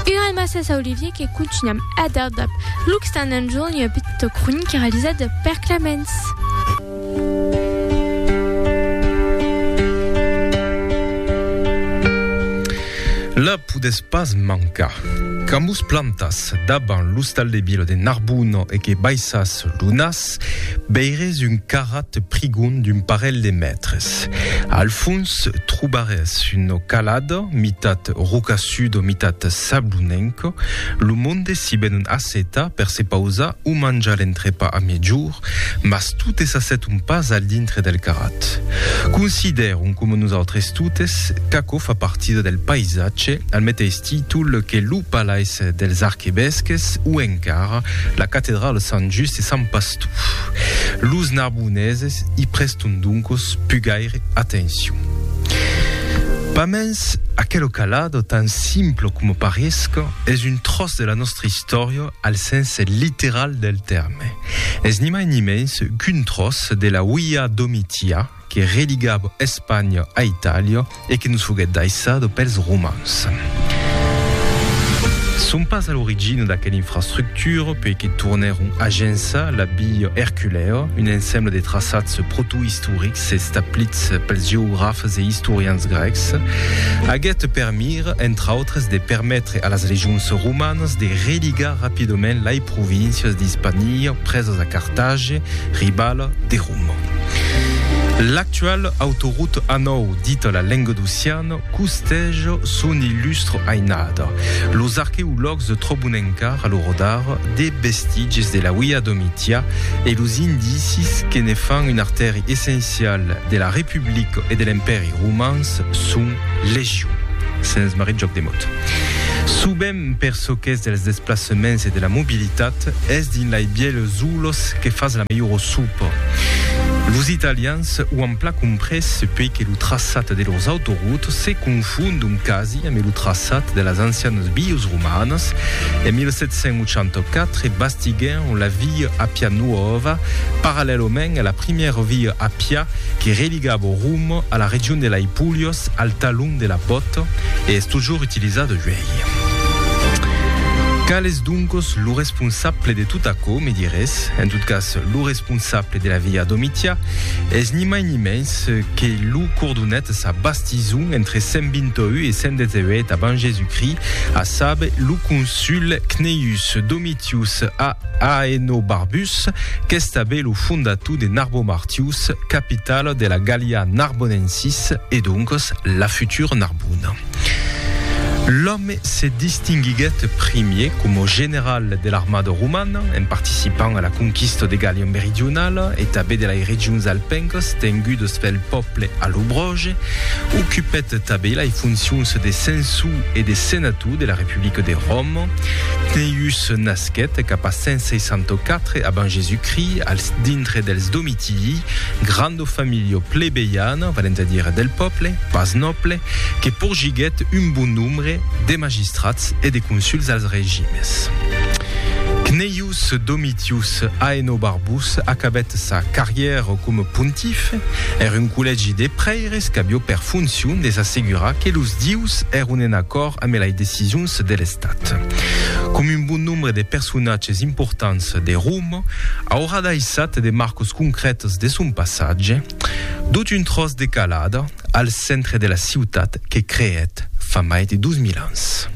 Una almassa sa Olivier que contunham a dar dab Luc Stan and John ua petita cronica realizada per Clemens. La podes pas mancar. Qu'amus plantas daban l'ostal de Bielo de Narbuno e que baissas lo nas, veires un carrat prigon d'un parelh de mètres. Al fons trobarès una calada, mitat rocassuda, mitat sablonenca. Lo monde s'i ven un assetar per se pausar o manjar l'entrepà a mejorn, mas totes s'asseton pas al dintre del carrat. Considèron, coma nosautres totes, qu'aquò fa partida del paisatge, al meteis títol que lo Palais dels Arquevesques o encara la Catedrala Sant Just e Sant Pastor. Los narboneses i preston doncos pus gaire atencion. Pas mens, aquelo calado, tan simple coma paresca, es un tròç de la nòstra istòria al sens literal del tèrme. Es ni mai ni mens qu'un tròç de la Uia Domitia, que religava Espanha a Itàlia e que nos foguèt daissada pels romans. Son pas a l'origina d'aquela infrastructura puèi que tornèron agençar la Via Erculèa, un ensembla de traçats protoistorics establits pels geografes e istorians grècs, aguèt per mira, entre autres, de permetre a las legions romanas de religar rapidament lai províncias d'Hispania presas a Cartagi, ribala de Roma. L'actual autoroute A9, dita la Lengadociana, costèj son illustre ainada. Los arqueològs tròbon encara lo rodar de vestitges de la Via Domitia e los indicis que ne fan un artèri essencial de la Republica e de l'Empèri Romans son legion. Sens marrit jòc de mot. Subèm. Per çò qu'es dels desplaçaments e de la mobilitat, es dins lei bièlhs zoolos que fas la melhora sopa. Los italians o an plan comprés puei que lo traçat de lors autoroutes se confondon quasi ame lo traçat de las ancianas vias romanas. En 1784 bastiguèron la via Appia Nuova parallèlament a la primièra via Appia que religava Roma a la region de lei Pulhas al talon de la Bòt, Cat e es totjorn utilizada uèi. Qual es doncos lo responsable de tot aquò? Me dirés. En tot cas, lo responsable de la via Domitia es ni mai ni mens que lo cordonet sa bastison entre 128 e 118 abans Jesucrist, a saber, lo consul Cneius Domitius Aenobarbus, qu'estabe lo fondator de Narbomartius, capitala de la Gallia Narbonensis, E doncas la futura Narbona. L'òme se distinguiguèt primier coma general de l'armada romana en participant a la conquista de Gàllia Meridionala e tanben de lai regions alpencas tengudas pel pòble allobroge. Ocupèt tanben lai foncions de censor e de senator de la Republica de Roma. Cneius nasquèt cap a 164 abans Jesús-Crist als dintre dels Domitii, gran. Lo familio plebeiano, valent a dire del pòble, pas nòble, que porgiguèt un bon nombre de magistrats e de consuls als regimes. Cneius Domitius Aenobarbus acabèt sa carrièra coma pontif er un collègi de prèires qu'avió per foncion de s'assegurar que los dieus èron en acòrd ambe lai decisions de l'estat. Com un bon nombre de personatges importants de Roma, Aurà daissat de marcas concrètas de son passatge, dut un tròç de calada al centre de la ciutat que creèt fa mai de 2000 ans.